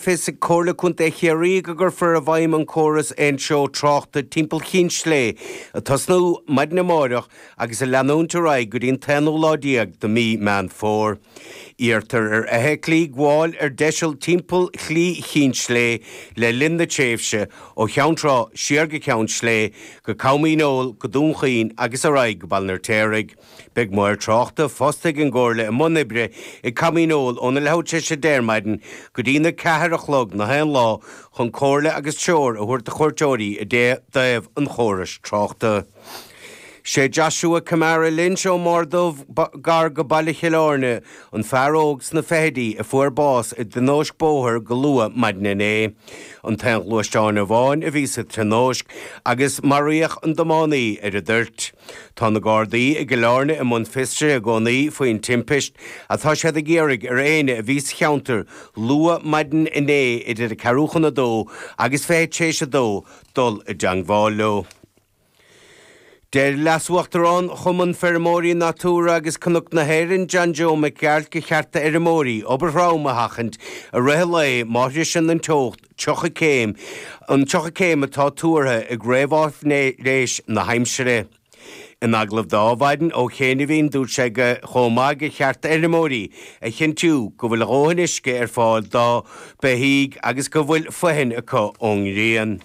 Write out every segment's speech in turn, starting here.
fios ag Comhairle Contae Chiarraí go gcuirfear i bhfeidhm an córas aontreo tráchta timpeall Chinn Sléibhe, ag tosnú maidin amárach agus ag leanúint ar aghaidh go dtí an t-aonú lá déag de mhí Meán Fómhair. Iarrtar ar fheithiclí gabháil ar deiseal timpeall Shlí Chinn Sléibhe le linn na tréimhse ó Cheann Trá siar go Ceann Sléibhe, go Com Dhíneol, go Dún Chaoin agus ar aghaidh go Baile an Fheirtéaraigh. Beidh maoir tráchta fostaithe ag an gComhairle i mbun oibre i gCom Dhíneol óna leathuair tar éis a deich ar maidin go dtína ceathair a chlog nach aon lá chun comhairle agus treoir a thabhairt do chuairteoirí i dtaobh an chórais tráchta. Sé Joshua Kamara Lynch ón mBarr Dubh gar go baile Chill Áirne an fear óg sna fichidí a fuair bás i dtionóisc bóthair go luath maidin inné. An t-aon ghluaisteán amháin a bhí sa tionóisc agus maraíodh an tiománaí ar an dtoirt. Tá na Gardaí i gCill Áirne i mbun fiosraithe i gcónaí faoin timpist. Tá siad ag iarraidh ar éinne a bhí sa cheantar luath maidin inné idir a ceathrú chun a dó agus fiche tar éis a dó dul i dteangmháil leo. Deir Leas-Uachtarán Chumann Feirmeoirí Natura agus Cnoc na hÉireann, John Joe Mac Gearailt gur cheart d'fheirmeoirí obair throm a sheachaint i rith an lae má shroiseann an teocht tríocha céim, an tríocha céim atá tuartha ag réamháifnéis na haimsire. In agallamh do Adhmhaidin ó chianaibhín dúirt sé chomh maith gur cheart d'fheirmeoirí a chinntiú go bhfuil a ndóthain uisce ar fáil dá mbeithígh agus go bhfuil fothain acu ón ngrian.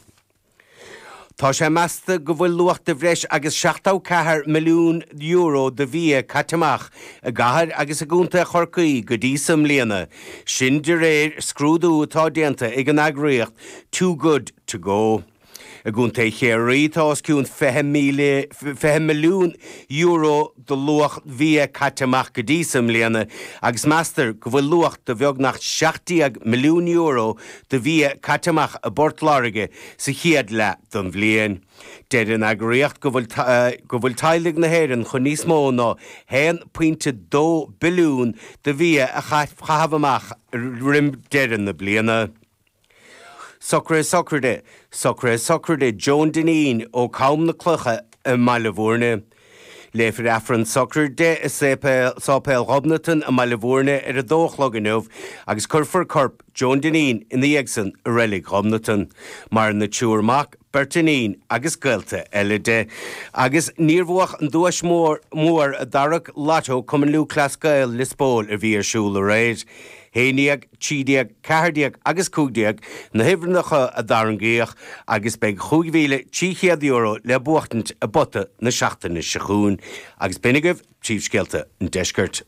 Tá sé measta go bhfuil luach de bhreis agus €74 milliún de bhia caite amach i gCathair agus i gContae Chorcaí go dtí seo i mbliana, sin de réir scrúdú atá déanta ag an eagraíocht Too Good To Go. I gContae Chiarraí tá os cionn €20 milliún de luach bhia caite amach go dtí seo i mbliana agus meastar go bhfuil luach de bheagnach €17 milliún de bhia caite amach i bPort Láirge sa chéad leath den bhliain. Deir an eagraíocht go bhfuil teaghlaigh na hÉireann chun níos mó ná a 1 pointe 2 billiún de bhia a chaitheamh amach roim deireadh na bliana. Socrú sochraide. Socrú sochraide Joan Dineen ó Chom na Cloiche i mBaile Bhúirne. Léifear Aifreann sochraide i Séipéal Ghobnatan i mBaile Bhúirne ar a dó a chlog inniu agus cuirfear corp Joan Dineen ina dhiaidh san i Reilig Ghobnatan. Maireann a triúr mac, beirt iníon agus gaolta eile de, agus níor buadh an duais mhór i dtarrac Lotto Chumann Lúthchleas Gael Lios Póil a bhí ar siúl aréir. Haon déag, trí déag, ceathair déag agus cúig déag na huimhreannacha a tarraingíodh agus beidh cúig mhíle trí chéad euro le buachtaint i bpota na seachtaine seo chugainn. Agus b'in agaibh príomhscéalta an deiscirt.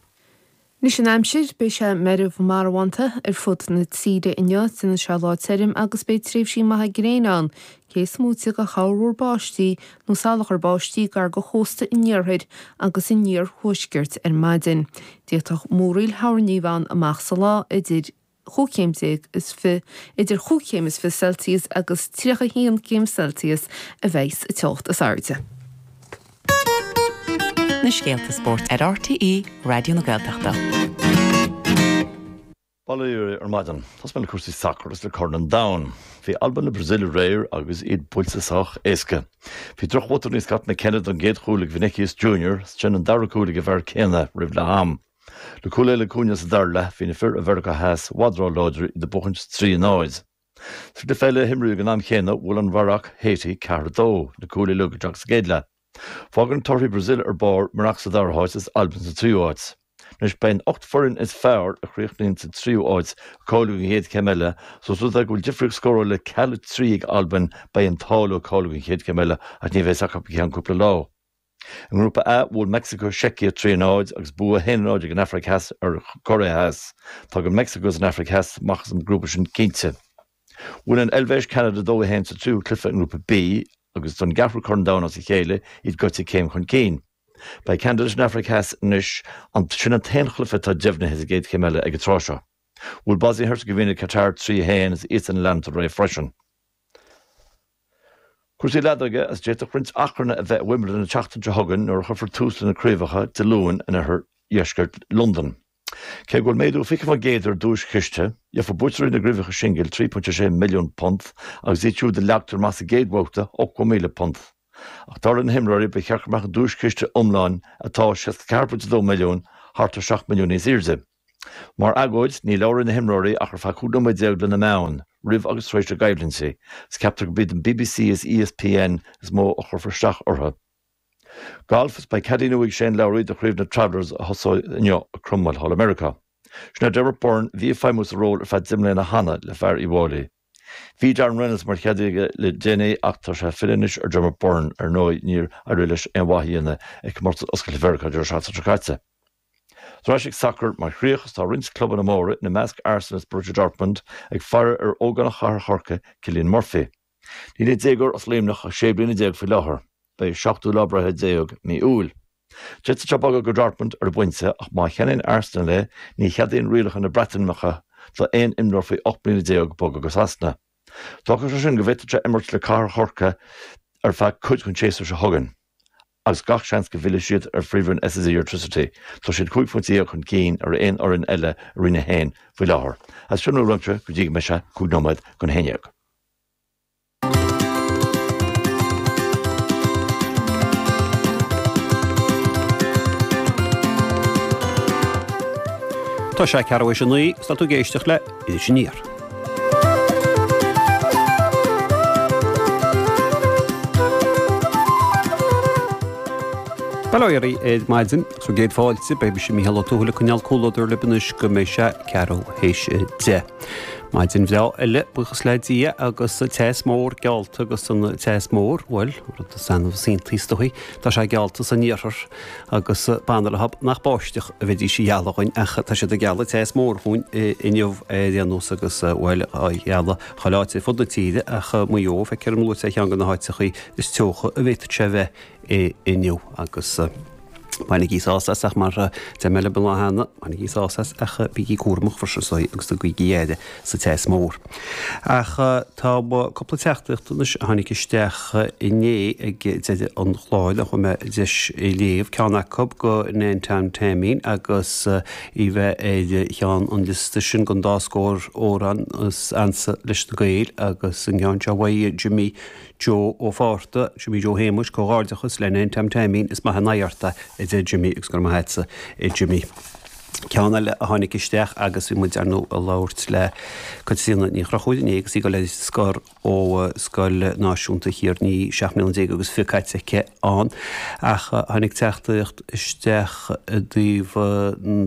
Anois an aimsir, beidh sé meirbh marbhánta ar fud na tíre inniu. Déanfaidh sé lá tirim agus beidh tréimhsí maithe gréine ann, cé is moite de chorrmhúr báistí nó salachar báistí gar do chósta an iarthair agus an iarthuaiscirt ar maidin. D'fhéadfadh múraíl thoirní a bheith ann amach sa lá idir. chúig chéim déag is fiche, idir chúig chéim is fiche Celsius agus tríocha haon céim Celsius a bheas an teocht is airde. Na scéalta spóirt ar RTÉ Raidió na Gaeltachta. Bail ó Dhia oraibh ar maidin. Tosóidh mé le cúrsaí sacair agus le Corn an Domhain. Bhí Albain le Brasaíl aréir agus iad buailte sách éasca. Bhí drochbhotún ó Scott McKenna don gcéad chúl ag Vinicius Junior, ansin an dara cúl ag an bhfear céanna roimh leath am. Le cúl eile le Cunha sa dara leath, bhí na fir ó Mheiriceá Theas i bhfad róláidir, iad ag buachaint trí a náid. Sa gcluiche eile a himríodh ag an am chéanna, bhuail Maracó Haiti ceathair a dó, na cúil uilig isteach sa gcéad leath. Fágann na torthaí Brazil ar barr Maracó sa dara háit is Albain sa tríú háit. Anois beidh na hocht bhfoireann is fearr a chríochnaíonn sa tríú háit ag cáiliú don chéad chéim eile so os rud é go bhfuil difríocht scórála le ceal a trí ag Albain beidh an t-ádh leo cáiliú don chéad chéim eile ach ní bheidh a fhios acu go ceann cúpla lá. I nGrúpa A, bhuail Meicsiceo, Seicia, 3 0 agus bua 1 0 ag an Afraic Theas ar Choiré Theas. Tagann Meicsiceo is an Afraic Theas amach as an ngrúpa sin cinnte. Bhuail an Eilvéis, Ceanada 2 1 sa tríú cluiche i nGrúpa B agus don gceathrú Corn Domhain as a chéile iad goite céim chun cinn. Beidh Ceanada leis an Afraic Theas anois, sin an t-aon chluiche atá deimhnithe sa gcéad chéim eile ag an tráth seo. Bhuail Bosnia Herzegovina Catar 3 1 is iadsan ag leanacht ar aghaidh freisin. Cúrsaí leadóige is d'fhéadfadh roinnt achrainn a bheith i Wimbledon an tseachtain seo chugainn nuair a chuirfear tús le na craobhacha Dé Luain in oirthear dheisceart Londan. Cé go bhfuil méadú 20% ar an duaischiste, gheobhaidh buaiteoirí na gcraobhacha singil £3.6 milliún agus iad siúd a leagtar amach sa gcéad bhabhta £80,000. Ach dar le na himreoirí ba cheart go mbeadh an duaischiste iomlán atá £64.2 milliún thart ar 7 milliún níos airde. Mar agóid, ní labhróidh na himreoirí ach ar feadh 15 nóiméad le na meáin, roimh agus tar éis a gcoimhlintí, is ceaptar gurb iad an bbc is ESPN is mó a chuirfear isteach orthu. Galf Is beidh cadaí nua ag Shane Lowry do chraobh na Travelers a thosóidh inniu i Cromwell thall i Meiriceá. Sin é Dermot Byrne a bhí ag feidhmiú sa ról ar feadh deich mbliana cheana le fear Uí bhFáilí. Bhí Darren Reynolds mar chadaí aige le déanaí ach tá sé ag filleadh anois ar Dermot Byrne. Ar ndóigh, níor éirigh leis aon mhaith a dhéanamh ag Comórtas Oscailte Mheiriceá Deireadh Seachtaine seo caite. Ar ais chuig sacar mar chríoch is tá roinnt clubanna móra, ina measc Arsenal is Borussia Dortmund, ag faire ar ógánach Chathair Chorcaí, Cillian Murphy. Níl an déagóir as Luimneach ach sé bliana déag faoi láthair. Beidh a seachtú lá breithe déag mí Iúil. D'fhéadfadh sé bogadh go Dortmund ar an bpointe ach má cheannaíonn Arsenal é, ní cheadaíonn rialacha na Breataimeacha d'aon imreoir faoi ocht mbliana déag bogadh go Sasana. D'fhágfadh sé sin go bhféadfad sé imirt le Cathair Chorcaí ar feadh cuid den séasúr seo chugainn agus gach seans go bhfillfidh siad ar Phríomhroinn SSE Airtricity. Tá siad cúig phointe dhéag chun cinn ar aon fhoireann eile i Roinn 1 faoi láthair agus sin a raibh de spórt go dtí go mbeidh sé cúig nóiméad chun a haon dhéag. Tá sé ceathrú tar éis a naoi, tá tú ag éisteacht le. Is aniar. Bail ó Dhia oraibh ar maidin agus céad fáilte, beidh mise Mícheál Ó Tuathail ag coinneáil comhluadar libh anois go mbeidh sé ceathrú tar éis a deich. Maidin bhreá eile, buíochas le Dia agus teas mór geallta agus an teas mór, bhuel, an rud is annamh is iontaí is dóigh, tá sé geallta san Iarthar. Agus b'annamh nach báisteach a bheidís a ghealladh dhuinn ach tá siad ag gealladh teas mór dhúinn inniu ar aon nós agus bhuel á ghealladh chuile áit ar fud na tíre ach Maigh Eo feicim luaite ar cheann de na háiteachaí is teocha a bhféadfadh sé a bheith inniu agus bainigí sásamh as ach mar a deir mé libh cheana, bainigí sásamh as ach bígí cúramach, fosaígí agus tugaigí aire. sa teas mór. Ach tá cúpla teachtaíocht anois a tháinig isteach inné ag deireadh an chláir ní raibh deis iad a léamh, ceann acu go Nan Tan Taimín agus í bheith ar cheann an liosta sin den dá scór amhrán is ansa leis na Gaeil agus an ceann seo uaidh Jimmy Joe Ó Fátharta, Jimmy Joe Shéamuis, comhghairdeachas le Nan Tan Taimín, is maith an aghaidh ort é a deir Jimmy agus go raibh maith agatsa a Jimmy. ceann eile a tháinig isteach agus bhí muid ar ndóigh ag labhairt le Caitríona Ní Chonchúir inné agus í ag dul ar scor ó Scoil Náisiúnta Thír an Fhia seacht mbliana déag agus fiche caite aici ann ach tháinig teachtaíocht isteach i dtaobh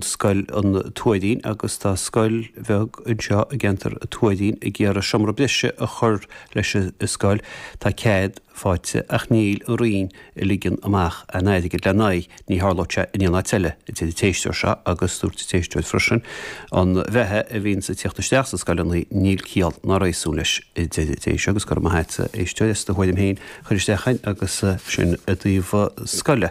scoil an Tuairín agus tá scoil bheag anseo i gceantar an Tuairín ag iarraidh seomra breise a chur leis an scoil tá cead fáighte ach níl an Roinn ag ligean amach an airgid lena aghaidh, ní tharlódh sé in aon áit eile, a deir an t-éisteoir seo agus dúirt an t-éisteoir freisin, an beatha a bhíonn ag tíocht isteach sna scoileanna, níl ciall ná réasún leis, a deir an t-éisteoir agus go raibh maith agat a éisteoir as do thuairim féin a chur isteach chugainn agus sin i dtaobh scoile.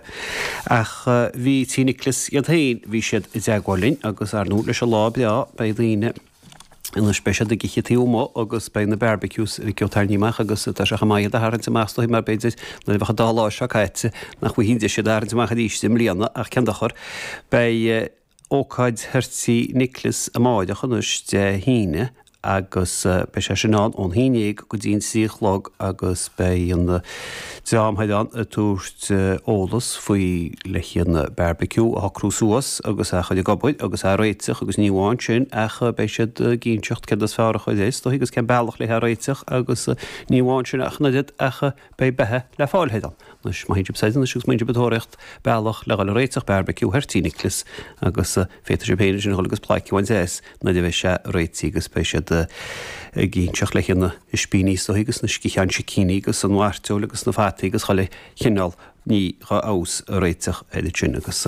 Ach bhí Tigh Niocláis iad féin, bhí siad i dteagmháil linn agus ar ndú leis an lá breá, beidh daoine. Anois beidh siad ag ithe taobh amuigh agus beidh na barbecues ag dul á dtarraingt amach agus tá sé chomh maith iad a tharraingt amach is dóigh mar b'fhéidir nuair a bheadh an dá lá seo caite nach bhfaighfí deis iad a tharraingt amach arís i mbliana ach cén dochar. Beidh ócáid thiar Tigh Niocláis amáireach anois Dé hAoine agus beidh sé sin ann ón haon dhéag go dtí an trí a chlog agus beidh na Déanfaidh an a tabhairt eolas faoi lena gcuid bearbaiciú a shocrú suas agus a chur ag obair agus a réiteach agus ní amháin sin ach beidh siad ag inseacht céard is fearr a chur is dóigh agus cén bealach lena réiteach agus ní amháin sin ach an oiread, ach beidh beatha le fáil ar an anois maithfidh sibh siad anois agus má tá sibh ag tóraíocht bealach le dhul a réiteach bearbaiciú thoirtíní clis agus féadfaidh sibh féin sin dhul agus plaic a bhaint as. Nuair a bheidh sé réitithe agus beidh siad ag inseacht leis na hispíní seo agus na sciatháin sicíní agus an mhairteoil agus na fataí agus chuile chineál ní dhá fheabhas a réiteach air ansin agus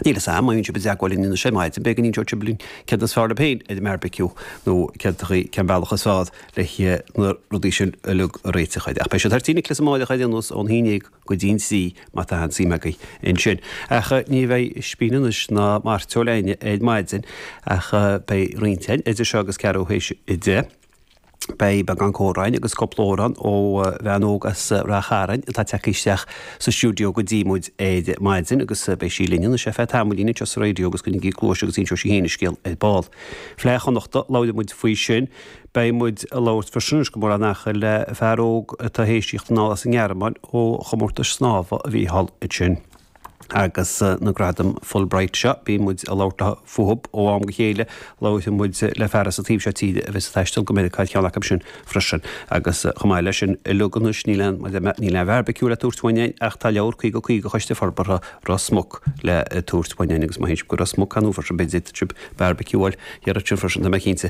níl fhios a'm, má bhíonn sibh i dteagmháil linn anois ar maidin beidh, go n-inseoidh sibh linn céard is fearr libh féin ar an mbeárbaiciú nó céard chaoi, cén bealach is fearr leis na rudaí sin uilig a réiteach air. Ach beidh siad thart Aoine Chlis amáireach air anuas ón hAoine ag. go dtí an trí má tá aon suim agaibh ansin. Ach ní bheidh ispín anois ná mairteoil a'inn ar maidin ach beidh roinnt a'inn idir seo agus ceathrú théis a deich. Beidh beagán comhrá a'inn agus cúpla amhrán ó bhean óg as Ráth Chairn atá tagtha isteach sa stiúideo go dtí muid ar maidin agus beidh sí linn anois ar feadh tamaillín anseo sa raidió agus coinnígí cluais agus inseoidh sí féin a scéal ar ball. Fleadh Chonnachta, labhróidh muid faoi sin. Beidh muid ag labhairt freisin, agus go mór mór, le fear óg atá théis tíocht anall as an nGearmáin ó chomórtais snámha a bhí thall ansin. Agus na gradaim Fulbright seo, bíonn muid ag labhairt fúthab ó am go chéile. Labhróidh muid le fear as an taobh seo tíre a bheas ag taisteal go Meiriceá ar cheann acu sin freisin. Agus chomh maith leis sin uilig, anois níl aon níl aon bheárbaiciú le tabhairt uainn fhein, ach tá leabhar 50 50 Choiste Forbartha Ros Muc le tabhairt uainn fhein, agus má théann sibh go Ros Muc, cá n-uafar sibh, beidh deis agaibh beárbaiciú a fháil thiar ansin freisin, tá mé cinnte.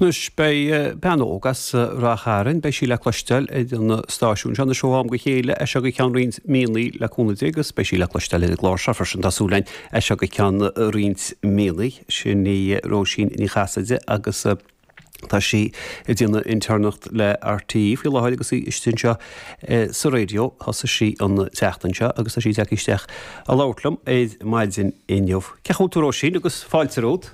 Anois, beidh bean óg as Ráth Chairn, beidh sí le cloisteáil ar an stáisiún seo anois ó am go chéile, as seo go ceann roinnt míonnaí le cúnamh Dé, agus beidh sí le cloisteáil ar an gclár seo freisin, tá súil againn, as seo go ceann roinnt míonnaí. Sin í Róisín Ní Chasaide agus tá sí ag déanamh intéirneacht le RTÉ faoi láthair agus í istigh anseo sa raidió. Thosaigh sí an tseachtain seo agus tá sí ag teacht isteach ag labhairt liom ar maidin inniu. Cén chaoi bhfuil tú a Róisín agus fáilte romhat.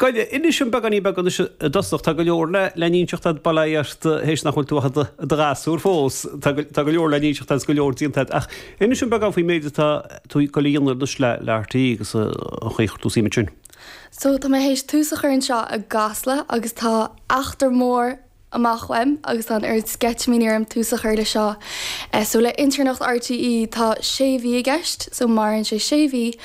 Goile, Inis dhom beagáinín beag anois i dtosach. Tá go leor le le n-inseacht a'd, bail ó Dhia ort théis nach bhfuil tú ach i do ghasúr fós. Tá go tá go leor le n-inseacht a'd 's go leor déanta a'd. Ach inis dhom beagán faoin méid atá tú ag goil a dhéanamh anois le le RTÉ agus an chaoi ar chuir tú suim ansin. So tá mé théis tús a chur anseo i gCasla agus tá eachtra mór amach romham agus tá an oiread sceitimíní orm tús a chur leis seo. So le intéirneacht RTÉ tá sé mhí i gceist, so maireann sé sé mhí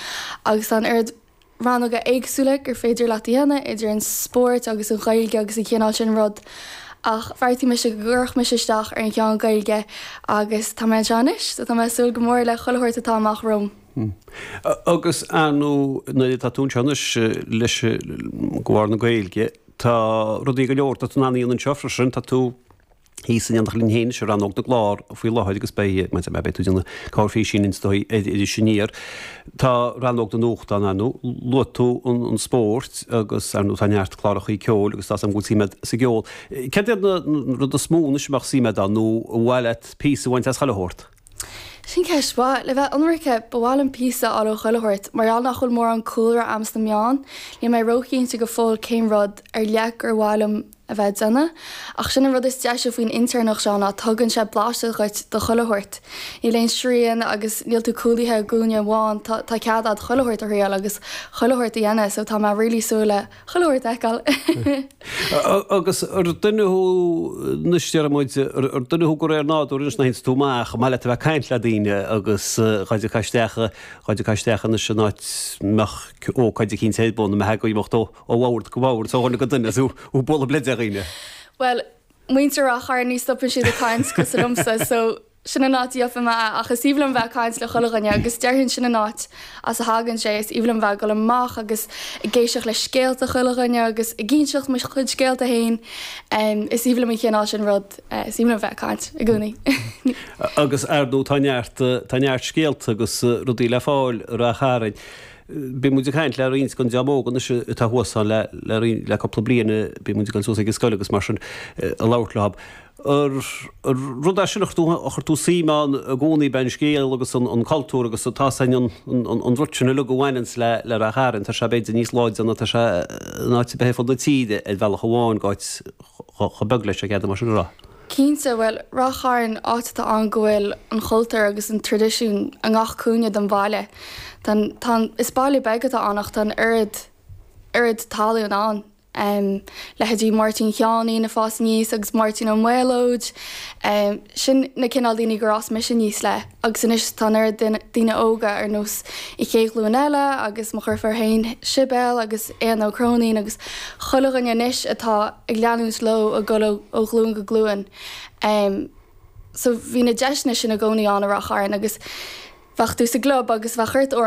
agus tá an oiread rannóga éagsúla gur féidir leat a dhéanamh, idir an spórt agus an Ghaeilge agus an cineál sin rud, ach bheartaigh mise go gcuirfeadh mise isteach ar an cheann Gaeilge agus tá mé anseo anois, so tá mé ag súil go mór le chuile shórt atá amach romham. Agus ar ndóigh, nuair atá tú anseo anois leis ábhar na Gaeilge, tá rudaí go leor atá tú in ann a dhéanamh anseo freisin, tá tú, Thíos in éineacht linn féin sa rannóg na gclár faoi láthair agus beidh, mar a deir mé, beidh tú ag déanamh cabhair freisin anseo ar Iris Aniar. Tá rannóg na nuachta ann, luaigh tú an spórt agus ar ndóigh tá neart cláracha ceoil agus tá a fhios a'm go bhfuil suim agat sa gceol. Céard iad na rudaí is mó anois a mbeadh suim agat ann nó ar mhaith leat píosa a bhaint as chuile shórt? Sin ceist mhaith. Le bheith ionraice, ba mhaith liom píosa a fháil ó chuile shórt. Mar gheall nach bhfuil mórán cúlra agam sna meáin, níl mé róchinnte go fóill cén rud ar leith gur mhaith liom a bheith ag déanamh. Ach sin an rud is deise faoin intéirneacht seo ná tugann sé blaiseadh dhuit do chuile shórt. Níl aon srian agus níl tú cúlaithe i gcúinne amháin, tá cead a'd chuile shórt a thriail agus chuile shórt a dhéanamh so tá mé really súil le chuile shórt a fheiceáil. Agus an duine thú, anois déarfaidh muid, an duine thú de réir nádúir anois nach ins tú amach, an maith leat a bheith ag caint le daoine agus ghoid a caith isteach, ghoid a caith isteach anois in áit a mbeadh ócáid eicínt a'd bun a mbeifeá ag imeacht ó, Ó bhord go bord, ó dhuine go duine, is ag bualadh bleid ar dhaoine. Bhuel, muintir Ráth Chairn ní stopann siad ag caint cosúil liomsa so sin an áit a bhfuair mé é ach is aoibhinn liom bheith ag caint le chuile dhuine agus déarfainn sin an áit as a thagann sé, is aoibhinn liom bheith ag dul amach agus ag éisteacht le scéalta chuile dhuine agus ag inseacht mo chuid scéalta féin. Is aoibhinn liom an chineál sin rud, eh, is aoibhinn liom bheith ag caint i gcónaí. Agus ar ndóigh tá neart, eh, tá neart scéalta agus eh, rudaí le fáil i Ráth Chairn. Bhí muid ag caint le roinnt den dream óg anois atá thuas ann le, le roinnt, le cúpla bliain, bíonn muid ag dul suas ag an scoil agus mar sin ag labhairt leo. An rud é sin a chuir tú, a chuir tú suim ann i gcónaí, b'é an scéal agus an, an cultúr agus an, tá a fhios a'd, an, an, an rud sin uilig a bhaineanns le, le Ráth Chairn, tá sé b'fhéidir níos láidre ná tá sé in áit ar bith ar fud na tíre ar bhealach amháin, áit chomh, chomh beag leis, an bhféadfá sin a rá? Cinnte, bhuel, Ráth Chairn, áit atá ann go bhfuil an chultúr agus an tradisiún i ngach cúinne den bhaile. Tá an, tá an, is baile beag atá ann ach tá an oiread, oiread tallann ann. Em, leithéidí Máirtín Sheáinín a' fás aníos agus Máirtín Ó Méalóid, em, sin na cineál daoine gur fhás mise aníos le. Agus anois tá an oiread daoine óga ar nós an chéad ghlúin eile agus mo dheirfiúr féin, Sibéal agus Éanna Ó Cróinín agus chuile dhuine anois atá ag leanúint leo a dhul ó ghlúin go glúin. So bhí na deiseanna sin i gcónaí ann i Ráth Chairn agus bheadh tú sa gclub agus bheadh ort